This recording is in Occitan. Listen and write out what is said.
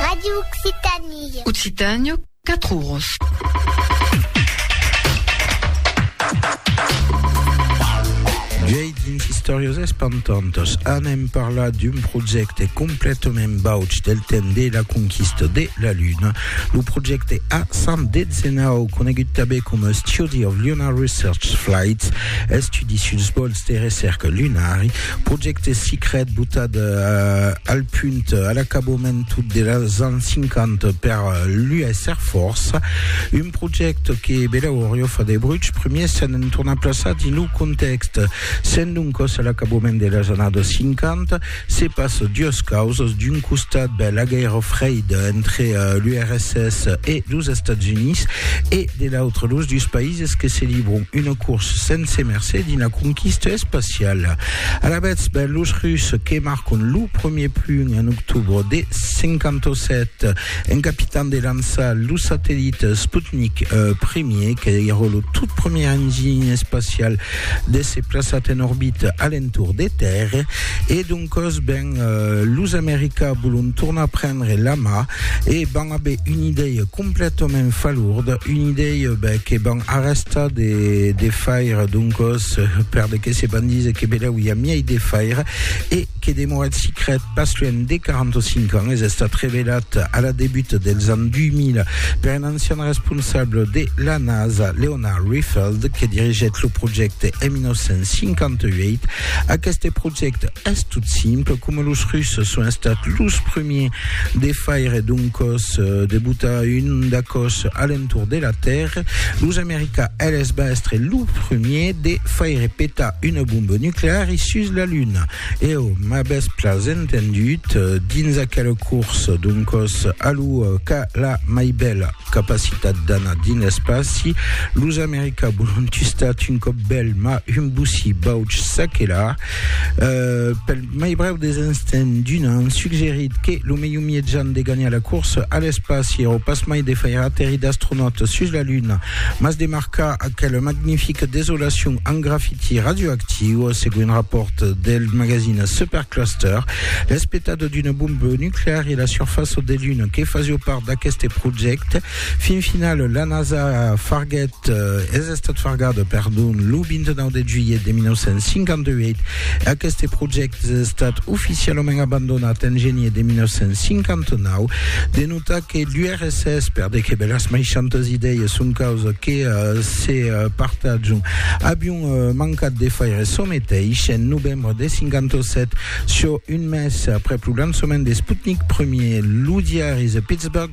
Radio Occitanie. Occitània, 4 oros. Viei dins Istòrias espantantas anem parlar d'un projècte completament bauch del temps de la conquista de la Luna, lo projècte A119, conegut també com a Study of Lunar Research Flights, estudi suls vòls de recerca lunari, Projècte Sicret botat al punt a l'acabament dels ans 50 per l'US Air Force, un projècte que Belau Oriofa de Bruch primièr s'en entorna plaçar dins lo contèxt. Sent doncas a l'acabament de las annadas 50, se passa duas causas, d'un costat ben la guèrra freida entre l'URSS e los Estats Units e de l'autre los dus païses que se libran una corsa sense mercé dins la conquista espaciala. sociala. Alavetz, ben, los Rus que marcon lo premier punt en octobre de 57 en capitan de lançar lo satellit Sputnik I, que èra lo tot premier enginy espacial d'èsser plaçat en orbita a l'entorn de Tèrra, e doncòs, ben, los Americans volon tornar prendre la mà e van aver una idèia Completament falourd, un idei ben, que van arrestar de, de faire, doncos, per de que se van dire que beleu i a miei de faire, e que demoret sicret pas luènh de 45 ans, es estat revelat a la debut dels ans 2000 per un ancian responsable de la NASA, Leonard Riefeld, que dirigèt lo projècte en 1958. Aqueste projècte, Es tot simple, coma los Russes son estats los premiers de faire d'un còs, de botar un da còs a l'entorn de la Tèrra, los Americans eles van èstre los premiers de faire petar una bomba nucleari sus la Luna. Èu m'avètz plas entendut dins aquela corsa d'un còs a l'ua qu'a la mai bèla capacitat d'anar dins l'espaci. Los Americans vòlon tustat un còp bèl, mas un bocí bauç çaquelà. Euh, pel mai brèu des instants d'un an, suggerit que lo melhor mietjan de ganhar la corsa a l'espaci èra pas mai de faire aterrir d'astronautas sus la Luna, mas de marcar aquela magnifica desolacion amb grafiti radioactiu, segon un rapòrt del magazine Supercluster. L'espetat d'una bomba nucleara e la surfaça de Luna que fasió part d'aqueste projècte Fin final, la NASA farguèt, es estat fargada, perdon, lo 29 de julhet de 1958. Aqueste projècte es estat oficialament abandonat en genier de 1959. De notar que l'URSS perdèt que bèlas meishantas idèias son causa que se partajon avion mancat de faire çò meteis en novembre de 57, çò un mes aprèp lo lançament de Sputnik Ier. Lo diari The Pittsburgh